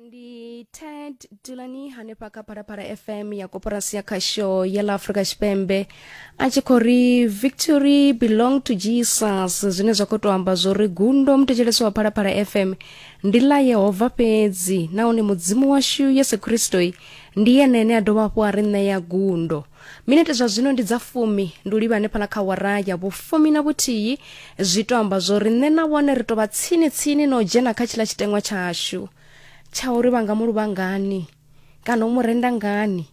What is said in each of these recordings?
ndi ted dulani hanefha kha phalaphala fm ya koporasi ya khasho ya ḽa afrika tshipembe a tshi khou ri victory belong to jesus zwine zwa khou tou amba zwo ri gundo mutetshelesi wa phalaphala fm ndi ḽa yehova fhedzi nahone mudzimu washu yesu kristoi ndi yene ane a dovha hafhu a ri ṋea gundo minete zwa zwino ndi dza fumi ndi u livha hanefhala kha wara ya vhufumi na vhuthihi zwi to amba zwo ri nṋe na vhone ri to vha tsini tsini na u dzhena kha tshiḽa tshiteṅwa tshashu tsha uri vha nga mu luvha ngani kana u mu renda ngani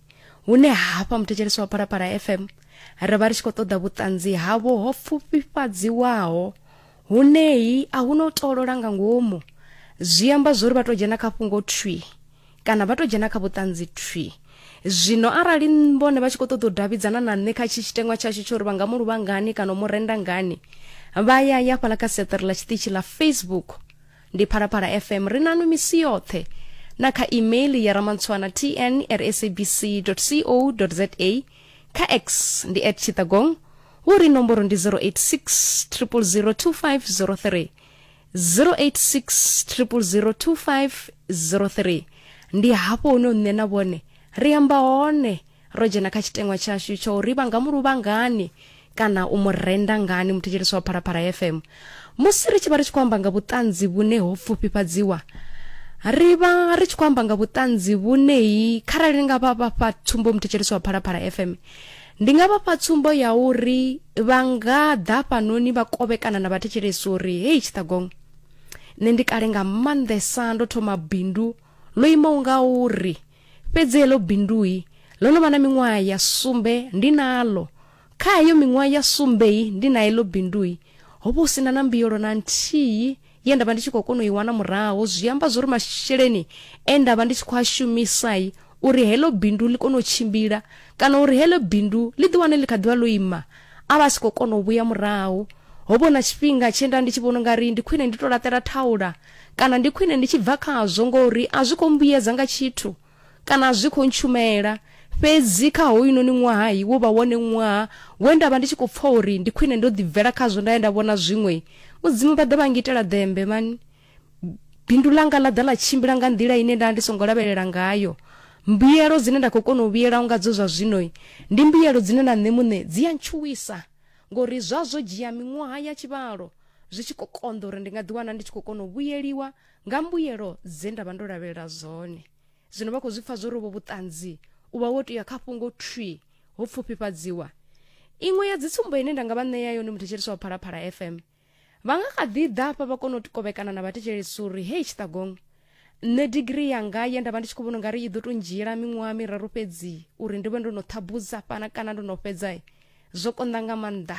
hune hafha muthetshelesi wa phalaphala fm ri vha ri tshi khou ṱoḓa vhuṱanzi havho ho pfufhifhadziwaho huneyi a hu no tolola nga ngomu zwi amba zwo ri vha to dzhena kha fhungo thwi kana vha to dzhena kha vhuṱanzi thwi zwino arali vhone vha tshi khou ṱoḓa u davhidzana na nṋe kha tshi tshitengwa tshashu tsho uri vha nga mu luvha ngani kana u mu renda ngani vha ya ya fhala kha seṱere ḽa tshiṱitshi ḽa facebook ndi phalaphala fm ri nanu misi yoṱhe na kha email ya ramantswana tn at sabc co za kha x ndi at tshitagong hu ri nomboro ndi 086 0002503 0860002503 ndi hafho hune nṋe na vhone ri amba hone ro dzhena kha tshitengwa tshashu tsho uri vha nga mu luvha ngani kana u mu renda ngani muthetshelesi wa phalaphala fm musi ri tshi vha ri tshi khou amba nga vhuṱanzi vhune ho pfufhifhadziwa ri vha ri tshi khou amba nga vhuṱanzi vhuneyi kharali nga vha vha fha tsumbo muthetshelesi wa phalaphala fm Ndi nga vha fha tsumbo ya uri vha nga ḓa hafhanoni vha kovhekana na vhathetshelesi uri, Hei tshiṱagong, nṋe ndi kale nga maanḓesa ndo thoma bindu ḽo imaho nga uri, fhedzi heḽo bindui ḽo no vha na miṅwaha ya sumbe ndi naḽo. Kha heyo miṅwaha ya sumbei ndi na heḽo bindui, ho vha hu si na na mbuyelo na nthihi ye nda vha ndi tshi khou kona u i wana murahu, zwi amba zwori masheleni e nda vha ndi tshi khou a shumisa uri heḽo bindu ḽi kone u tshimbila kana uri heḽo bindu ḽi ḓi wane ḽi kha ḓivha ḽo ima a vha a si khou kona u vhuya murahu. Ho vha hu na tshifhinga tshe nda ndi tshi vhona ungari ndi khwine ndi to laṱela thaula kana ndi khwine ndi tshi bva khazwo ngori a zwi khou mbuyedza nga tshithu. kana zwi khou ntshumela fhedzi kha hoyunoni ṅwaha wo vha wone ṅwaha we nda vha ndi tshi khou pfa uri ndi khwine ndo ḓibvela khazwo nda ye nda vhona zwiṅwe mudzimu vha ḓa vha ngitela ḓembe mani bindu langa ḽa ḓa ḽa tshimbila nga nḓila ine nda ndi songo lavhelela ngayo mbuyelo dzine nda khou kona u vhuyela nga dzo zwa zwino ndi mbuyelo dzine na nṋe muṋe dzi ya ntshuwisa ngori zwa zwo dzhia miṅwaha ya tshivhalo zwi tshi khou konḓa uri ndi nga ḓiwana ndi tshi khou kona u vhuyeliwa nga mbuyelo dze nda vha ndo lavhelela zwone zwino vha khou zwi pfa zwo rovho vhuṱanzi u vha wo tea kha fhungo thwi ho pfufhifhadziwa iṅwe ya dzitsumbo ine nda nga vha ṋea yone muthetshelesi wa phalaphala fm vha nga kha ḓi ḓa fha vha kona u kovhekana na vhathetshelesi uri hei tshiṱagong nṋe digiri yanga ye nda vha ndi tshi khou vhona ungari i ḓo tou ndzhiela miṅwaha miraru fhedzi uri ndi vhe ndo no ṱhabuza fhana kana ndo no fhedza zwo konḓa nga maanḓa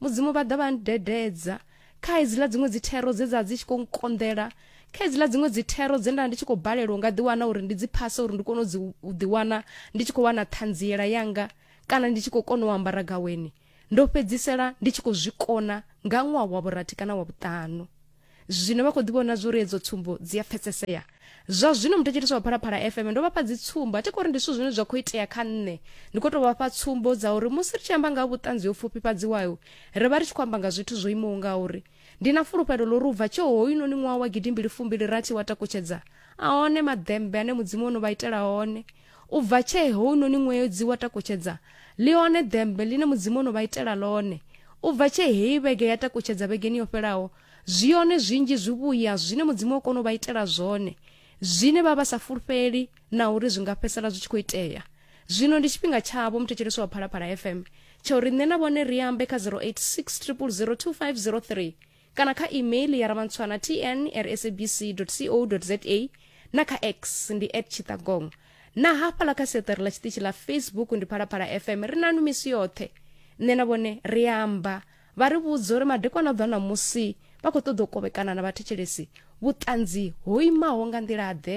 Mudzimu vha ḓa vha ndededza kha hedziḽa dziṅwe dzi thero dze dza dzi tshi khou nkonḓela kha hedziḽa dziṅwe dzi thero dze nda ndi tshi khou balelwa nga ḓiwana uri ndi dzi phase uri ndi kone u dzi u ḓiwana ndi tshi khou wana ṱhanziela yanga kana ndi tshi khou kona u ambara gaweni ndo fhedzisela ndi tshi khou zwi kona nga ṅwaha wa vhurathi kana wa vhuṱanu Zwino vha khou ḓi vhona zwo ri edzo tsumbo dzi a pfesesea. Zwa zwino muthetshelesi wa Phalaphala FM ndo vha fha dzitsumbo, a thi khou ri ndi zwithu zwine zwa khou itea kha nṋe. Ndi khou tou vha fha tsumbo dza uri musi ri tshi amba nga ha vhuṱanzi ho pfufhifhadziwaho, ri vha ri tshi khou amba nga zwithu zwo imaho nga uri. Ndi na fulufhelo ḽa uri u bva tshe hoyunoni ṅwaha wa gidimbili fumbili rathi wa takutshedza, a hone maḓembe ane Mudzimu o no vha itela one. U bva tshee hounoni ṅwedzi wa takutshedza ḽi hone ḓembe ḽine Mudzimu o no vha itela ḽone. U bva tshee heyi vhege ya takutshedza vhegeni yo fhelaho, zwi hone zwinzhi zwivhuya zwine Mudzimu o kona u vha itela zwone, zwine vha vha sa fulufheli na uri zwi nga fhedzisela zwi tshi khou itea. Zwino ndi tshifhinga tshavho, muthetshelesi wa Phalaphala FM, tsha uri nṋe na vhone ri ambe kha 086 000 2503. kana kha email ya ramantswana tn rsabc co za na kha x ndi at chitagong na hafhala kha seṱere ḽa tshiṱitshi ḽa facebook ndi phalaphala fm ri nanu misi yoṱhe nṋe na vhone ri amba vha ri vhudza uri madekwana a ḓwa ṋamusi vha khou ṱoḓa u kovhekana na vhathetshelesi vhuṱanzi ho imaho nga nḓila-ḓe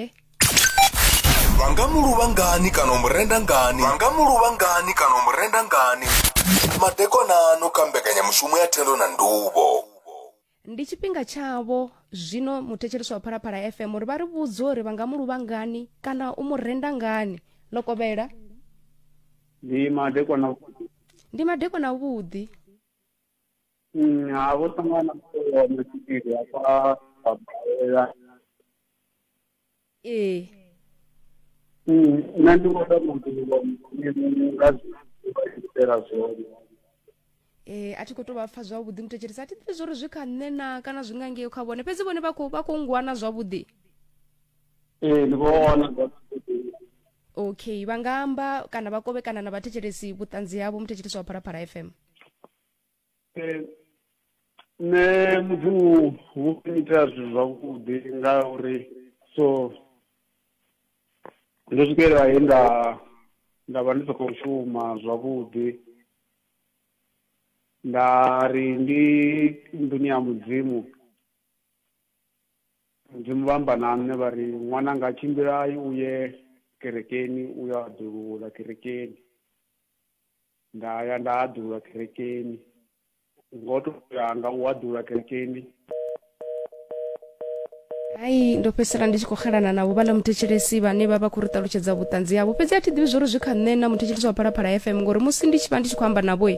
vha nga mu luvha ngani kana u mu renda ngani vha nga mu luvha ngani kana u mu renda ngani madekonano kha mbekanyamushumo ya thendo na nduvho ndi tshifhinga tshavho zwino muthetshelesi wa phalaphala fm uri vha ri vhudze uri vha nga mu luvha ngani kana u mu renda ngani ḽo kovhela ndi madekwana ndi madekwana avhuḓi Mm, ha vho sangana na mutevhe wa masipiri hafha babalela ee Mm, nṋe ndi vhona muḓivho mudzimu nga zwiitela zwone Eh, a thi khou tou vha pfa zwavhuḓi muthetshelesi a thi ḓivhi zwori zwi kha nṋe na kana zwi nga ngeo kha vhone fhedzi vhone vha khou vha khou ngwana zwavhuḓi ee ndi vhona okay vha nga amba kana vha kovhekana na vhathetshelesi vhuṱanzi havho muthetshelesi wa phalaphala fm Eh, nṋe mudzimu wo itela zwithu zwavhuḓi nga uri so ndo swikelela he nda nda vha ndi sa khou shuma zwavhuḓi nda ri ndi nḓuni ya mudzimu mudzimu vha amba na nṋe vha ri ṅwananga tshimbilai u ye kerekeni u yo aḓulula kerekeni nda ya nda haḓulwa kerekeni ngo to yanga u haḓulwa kerekeni hai ndo fhedzisela ndi tshi khou xelana navho vhaḽa muthetshelesi vhane vha vha khou ri ṱalutshedza vhuṱanzi havho fhedzi a thi ḓivhi zwori zwi kha nṋe na muthetshelesi wa phalaphala fm ngori musi ndi tshi vha ndi tshi khou amba navho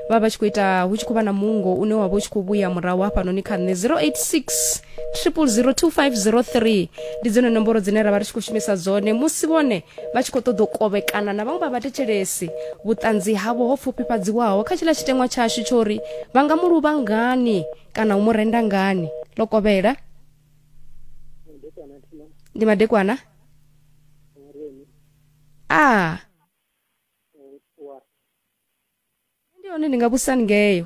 vha vha tshi khou ita hu tshi khou vha na mungo une wa vha u tshi khou vhuya murahu hafhanoni kha nṋe 086 0002503 ndi dzone nomboro dzine ra vha ri tshi khou shumisa dzone musi vhone vha tshi khou ṱoḓa u kovhekana na vhaṅwe vha vhathetshelesi vhuṱanzi havho ho pfufhifhadziwaho kha tshiḽa tshiteṅwa tshashu tsho ri vha nga mu luvha ngani kana u mu renda ngani ḽo kovhela ndi madekwana a ah. ndi hone ndi nga vhusani ngeyo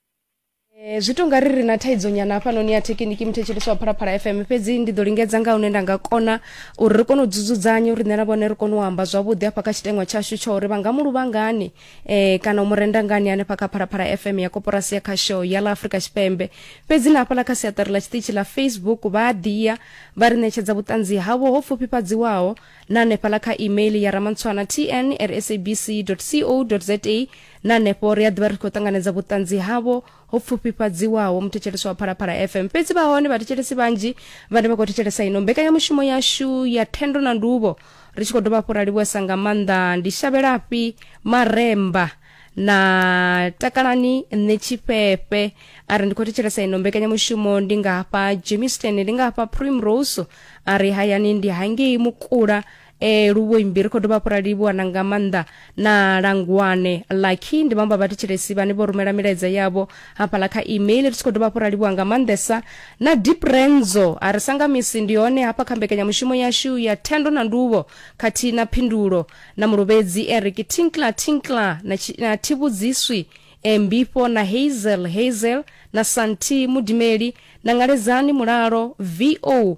Eh, zwi tonga ri ri na thaidzo nyana hafhanoni ya thekiniki muthetshelesi wa phalaphala fm fhedzi ndi ḓo lingedza nga hune nda nga kona uri ri kone u dzudzanya uri nṋe na vhone ri kone u amba zwavhuḓi hafha kha tshiteṅwa tshashu tsha uri vha nga mu luvha ngani eh, kana u mu renda ngani hanefha kha phalaphala fm ya koporasi ya khasho ya ḽa afurika tshipembe fhedzi na hafhaḽa kha siaṱari ḽa tshiṱitshi ḽa facebook vha a ḓiya vha ri ṋetshedza vhuṱanzi havho ho pfufhifhadziwaho na hanefhaḽa kha email ya ramantswana tn at sabc co za na hanefho ri a ḓivha ri khou ṱanganedza vhuṱanzi havho ho pfufhifhadziwaho muthetshelesi wa phalaphala fm fhedzi vha hone vhathetshelesi vhanzhi vhane vha khou thetshelesa ino mbekanyamushumo yashu ya thendo na nduvho ri tshi khou dovha hafhu ra livhuwesa nga maanḓa ndi shavhelafhi maremba na takalani nṋe tshifhefhe a ri ndi khou thetshelesa ino mbekanyamushumo ndi nga hafha jemisten ndi nga hafha primrose a ri hayani ndi hangei mukula e luvhoyi mbiri khou dovha hafhu ra livhuwa na nga maanḓa na langwane lucky ndi vhamba vhathetshelesi vhane vho rumela milaedza yavho hafhaḽa kha email ri tshi khou dovha hafhu ra livhuwa nga maanḓesa na deep renzo a ri sanga misi ndi hone hafha kha mbekanyamushumo yashu ya thendo na nduvho khathihi na phindulo na mulovhedzi eric tinkla tinkla na, chi- na thivhudziswi e mbifho na hazel hazel na santi mudimeli na ngaledzani mulalo vo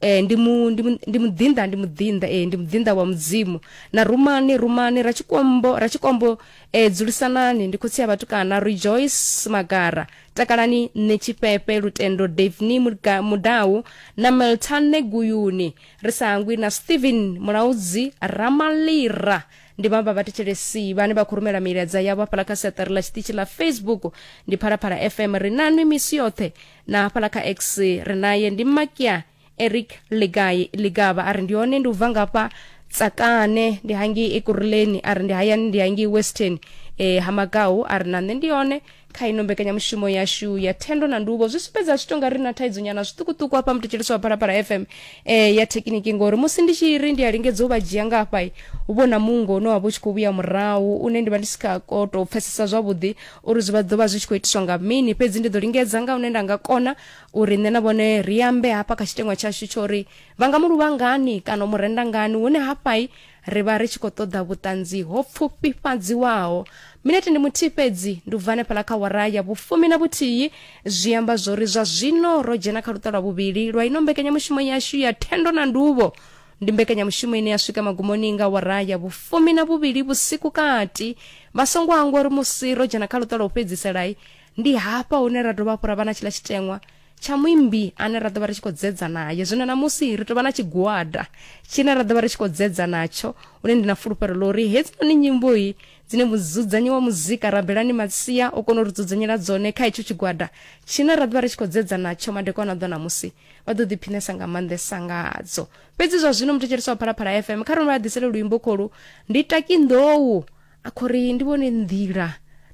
Eh, ndi mu ndi mu- ndi muḓinḓa ndi muḓinḓa eh, ndi muḓinḓa wa mudzimu na rumani rumani ra tshikombo ra tshikombo eh, dzulisanani ndi khotsi ya vhatukana rejoice magara takalani nṋe tshifhefe lutendo davni Muga- mudau na meltane guyuni ri sa hangwi na stephen mulaudzi ramalira ndi vhaṅwe vha vhathetshelesi vhane vha khou rumela milaedza yavho hafhala kha siaṱari ḽa tshiṱitshi ḽa facebook ndi phalaphala fm ri nanwi misi yoṱhe na hafhaḽa kha x ri naye ndi makia eric ligai ligaba a ri ndi hone ndi u bva ngafha tsakane ndi hangei ekuruleni a ri ndi hayani ndi hangei western e, ha magau a ri na nṋe ndi hone kha ino mbekanyamushumo yashu ya thendo na nduvho zwi sumbedza zwi tonga ri na thaidzo nyana zwiṱukuṱuku hafha mutetshelisi wa phalaphala fm e, ya thekiniki ngori musi ndi tshi ri ndi a lingedza u vha dzhia nga hafha hu vho na mungo une wa vha u tshi khou vhuya murahu une ndi vha ndi si kha koto pfesesa zwavhuḓi Uri zwi vha ḓo vha zwi tshi khou itiswa nga mini, fhedzi ndi ḓo lingedza nga hune nda nga kona uri nṋe na vhone ri ambe hafha kha tshiteṅwa tshashu tsho uri vha nga mu luvha ngani kana u mu renda ngani, hune hafhai ri vha ri tshi khou ṱoḓa vhuṱanzi ho pfufhifhadziwaho. Minete ndi muthihi fhedzi, ndi u bva hanefhaḽa kha wara ya vhufumi na vhuthihi, zwi amba zwo uri zwa zwino ro dzhena kha luṱa lwa vhuvhili lwa ino mbekanyamushumo yashu ya thendo na nduvho. ndi mbekanyamushumo ine ya swika magumoni nga wara ya vhufumi na vhuvhili vhusiku kati vha songo hangwa uri musi ro dzhena kha luṱa lwa u fhedziselayi ndi hafha hune ra dovha hafhu ra vha na tshiḽa tshiteṅwa tsha muimbi ane ra ḓovha ri tshi khou dzedza naye zwino namusi ri tovha na tshigwada tshine ra ḓovha ri tshi khou dzedza natsho une ndi na fulufhelo ḽa uri hedzinoni nyimboyi dzine mudzudzanyi wa muzika rabelani matsia o kona u ri dzudzanyela dzone kha hetsho tshigwada tshine ra ḓovha ri tshi khou dzedza natsho madekwana a ḓo namusi vha ḓo ḓiphinesa nga maanḓesa ngadzo fhedzi zwa zwino muthetshelesi wa phalaphala fm kha rona vha ḓisele luimbo kholu ndi taki nḓou a khou ri ndi vhone nḓila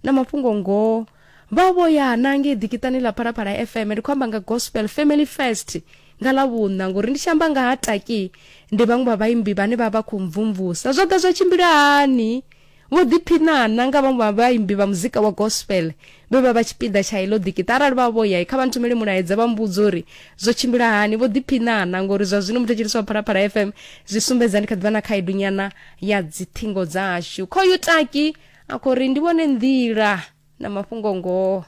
na mafhungo ngoho vha vho ya na ngei ḓikitani ḽa phalaphala fm ndi khou amba nga gospel family first nga ḽa vhuṋa ngori ndi tshi amba nga ha taki ndi vhaṅwe vha vhaimbi vhane vha vha khou mvumvusa zwo ḓa zwa tshimbila hani Vho ḓiphiṋa na nga vhaṅwe vha vhaimbi vha muzika wa gospel vhe vha vha tshipiḓa tsha heḽo ḓikiṱa. Arali vha vho ya kha vha nthumele mulaedza vha mbudza uri zwo tshimbila hani. Vho ḓiphiṋa na ngori zwa zwino muthetshelesi wa Phalaphala FM zwi sumbedza ndi kha ḓivha na khaedu nyana ya dzithingo dzashu. Khoyu taki a khou ri ndi vhone nḓila na mafhungo ngoho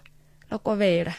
ḽo kovhela.